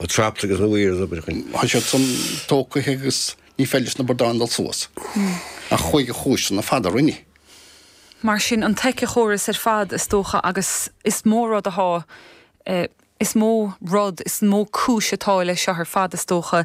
Ó traps agus na weirs obair chun. Tá siad san tógtha agus ní féidir leis na bradáin dul suas. Ach chuaigh a chúiseanna fada roinne. Mar sin an t-éiceachóras ar fad is dócha agus is mó rud atá, is mó rud, is mó cúis atá leis seo ar fad is dócha.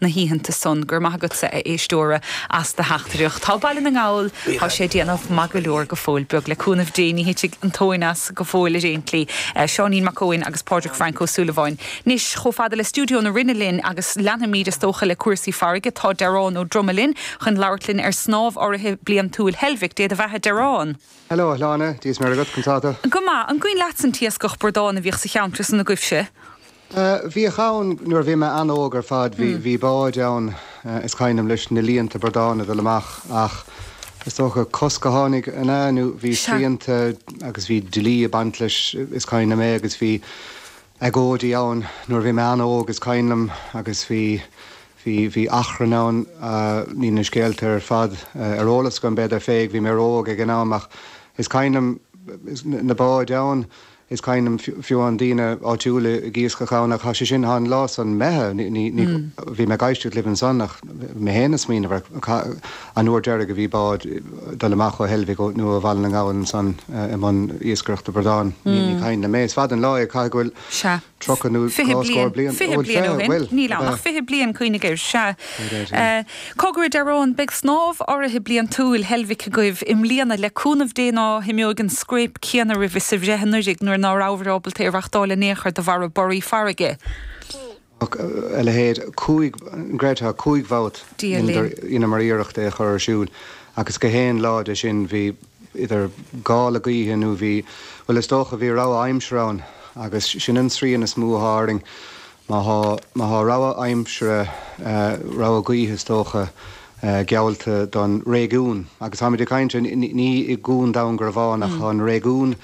na hoícheanta san. Go raibh maith agatsa, a éisteoir, as do theachtaireacht. Tá Baile na nGall, tá sé ag déanamh maith go leor, go fóill, beag le cúnamh Dé, ní thitfidh an tóin as go fóill ar aon tslí. Seáinín Mac Eoin agus Pádraig Frainc Ó Súilleabháin anois chomh fada le stiúideo na Rinne linn agus leanfaimid, is dócha, le cúrsaí farraige. Tá Dearán Ó Droma linn chun labhairt linn ar snámh urraithe bliantúil Heilbhic. Dé do bheatha, Dearán! Hello, a Shláine, Dia 's Muire agat, conas tá tú? Go maith. An gcuimhin leatsa an t-iascach bradán a bhíodh sa cheantar san agaibhse? Bhíodh ann nuair a bhí mé an-óg ar fad, bhí, bhí báid ann is cuimhin liom leis na líonta bradán ag dul amach ach is dócha cosc a tháinig an ea nó bhí Sea. srianta agus bhí dlí ag baint leis is cuimhin liom é agus bhí agóidí ann nuair a bhí mé an-óg is cuimhin liom agus bhí, bhí, bhí achrann ann, níl na scéalta ar fad ar eolas agam, b'fhéidir, bhí mé ró-óg ag an am ach is cuimhin liom na báid ann. is cuimhin liom fiú amháin daoine áitiúla ag iascach ann ach tá sé sin thá an lá san imithe bhí mé ag éisteacht libh ansan ach mé féin ag smaoineamh ar an uair deiridh a bhí bád dul amach ó Heilbhic nó ó Bhaile na nGall ansan i mbun iascaireachta bradán ní cuimhin liom é is fada an lá é caithfidh go bhfuil Sea. Tríocha nó fiche dhá scór bliain? Fiche bliain ó shin, níl ann ach fiche bliain, cuimhnigh air, sea. Cogar, Dearán. Beidh snámh urraithe bliantúil Heilbhic agaibh i mbliana, le cúnamh Dé ná himeoidh an scrape céanna oraibh is a bhí anuiridh nuair ná rabhabhair ábalta é a reachtáil in aon chor de bharr borraí farraige. Ach a leithéid, cúig, an gcreidfeá, cúig bhabhta dheineamar iarracht é a chur ar siúl agus gach aon lá de sin bhí, idir gála gaoithe nó bhí, bhuel is dócha bhí rabhadh aimsire ann agus sin an srian is mó a thá orainn má thá, má thá rabhadh aimsire, rabhadh gaoithe is dócha, geallta don réigiún. Agus táimid ag caint, ní i gCuan Dhún Garbhán ach an réigiún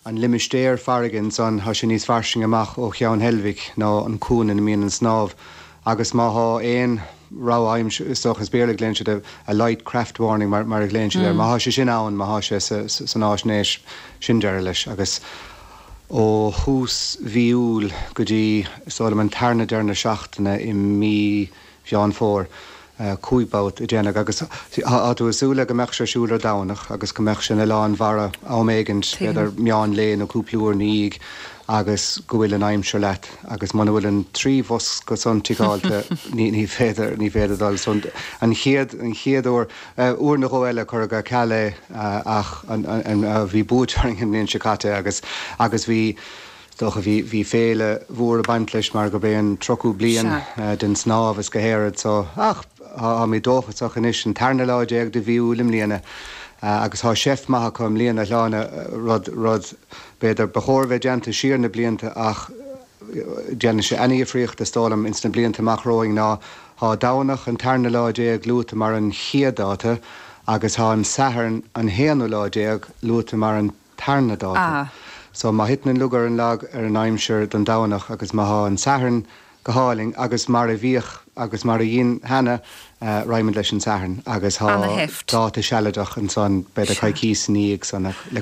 an limistéar farraige ansan, thá sé níos fairsinge amach ó Cheann Heilbhic ná an cuan ina mbíonn an snámh, agus má thá aon rabhadh aimsire, is dócha, as Béarla a ghlaonn siad air, a light craft warning mar a ghlaonn siad air, má thá sé sin ann, má thá sé san fháisnéis, sin deireadh leis, agus ó thús mhí Iúil go dtí, is dóigh liom, an tarna deireadh na seachtaine i mí. Mheán Fómhair, cúig babhta a deineadh agus tá tú ag súil le go mbeadh sé ar siúl ar Domhnach agus go mbeadh sé ina lán mhara am éigint, b'fhéidir meán lae nó cúpla uair ina dhiaidh agus go bhfuil an aimsir leat agus muna bhfuil an trí bhosca san ticeáilte ní féidir, ní féidir dul. So an chéad, an chéad uair, uair nó dhó eile cuireadh ar ceal é ach an, an, bhí buaite orainn an bhliain seo caite agus, agus bhí, dócha. Bhí féile mhór ag baint leis mar gurb é an tríochú bliain den tsnámh is gach aon rud so. Ach tháimid dóchasach anois, an tarna lá déag de mhí Iúil i mbliana agus thá seift maith acu i mbliana a Shláine, rud b'fhéidir ba chóir a bheith déanta siar na blianta ach déanfaidh sé an-dhifríocht is dóigh liom ins na blianta amach romhainn, ná thá Domhnach an tarna lá déag luaite mar an chéad dáta agus thá an Satharn an haonú lá déag luaite mar an tarna dáta. Ah. So má thiteann an lug ar an lag ar an aimsir don Domhnach agus má thá an Satharn go hálainn agus mar a bhíodh agus mar a dhein cheana, eh, raghaimid leis an Satharn agus thá Ana-sheift. dáta sealadach ansan, b'fhéidir Sea. choicís i ndiaidh san le